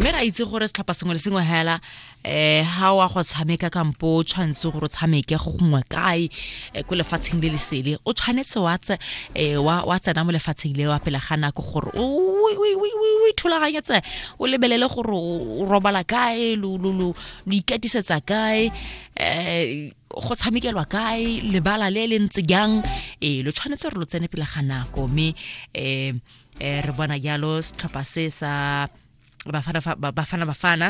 mme ra itse gore setlhopha sengwe le sengwe hela eh ha wa go tshameka kampo o tshwanetse gore o tshameke go gongwe kae eh, ko lefatsheng le lesele o tshwanetse wa tse eh, wa wa tsena mo lefatsheng le wa pele ga nako gore o o- o- o- o- o ithulaganyetse o lebelele gore o o robala kae lo lo lo lo ikatisetsa kae eh go tshamekelwa kae lebala le le ntse jang eh lo tshwanetse gore lo tsene pele ga nako mme eh eh re bona jalo setlhopha se sa bafana bafana bafana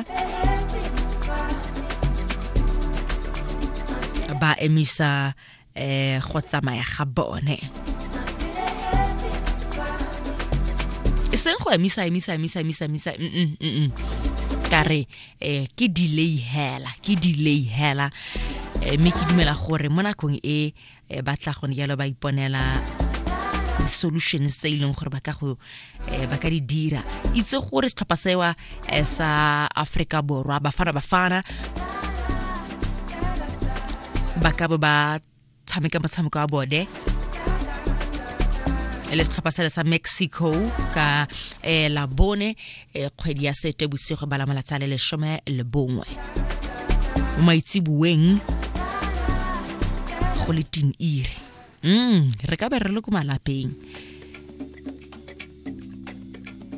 ba emisa eh go tsamaya ga bone e seng go emisa emisa emisa emisa emisa mm, mm, mm, ka re eh ke delay hela ke delay hela eh, mme ke dumela gore mo nakong e e ba tla gone jalo ba iponela di-solution tse e leng gore ba ka go eh, ba ka di dira itse gore setlhopha sewa eh, sa aforika borwa bafana bafana ba ka bo ba tshameka motshameko wa bone le setlhopha sele sa mexico ka eh, labone e kgwedi ya sete bosigo ba la malatsa le lesome le bongwe mo maitseboeng go le tin iri mm re ka be re le ko malapeng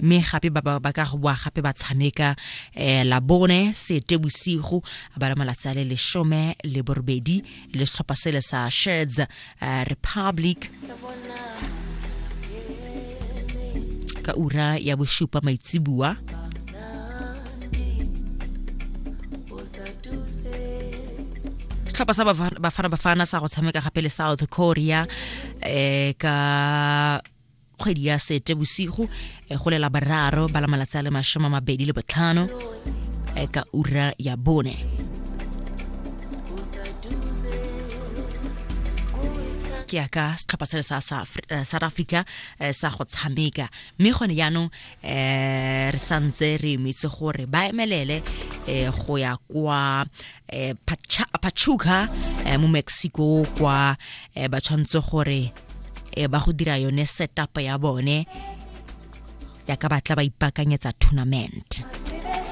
mme gape ba ba ka go boa gape ba tshameka um labone sete bosigo ba la malatsi a le lesome le borobedi le setlhopha sele sa shirts uh, republic ka ura ya bosupa maitsibua setlhopha sa bafana bafana sa go tshameka gape le south korea um ka kgwedi ya sete bosigo e go lela bararo ba la malatsi a le masome mabedi le botlhano e ka ura ya bone ke ya ka setlhopha se le sa eh, south africa eh, sa go tshameka mme gone jaanong um re santse re emetse gore ba emelele um go ya kwa eh, pachuca eh, mo mexico kwa eh, ba tshwanetse gore eh, ba go dira yone setup ya bone ya ka batla ba ipakanyetsa tournament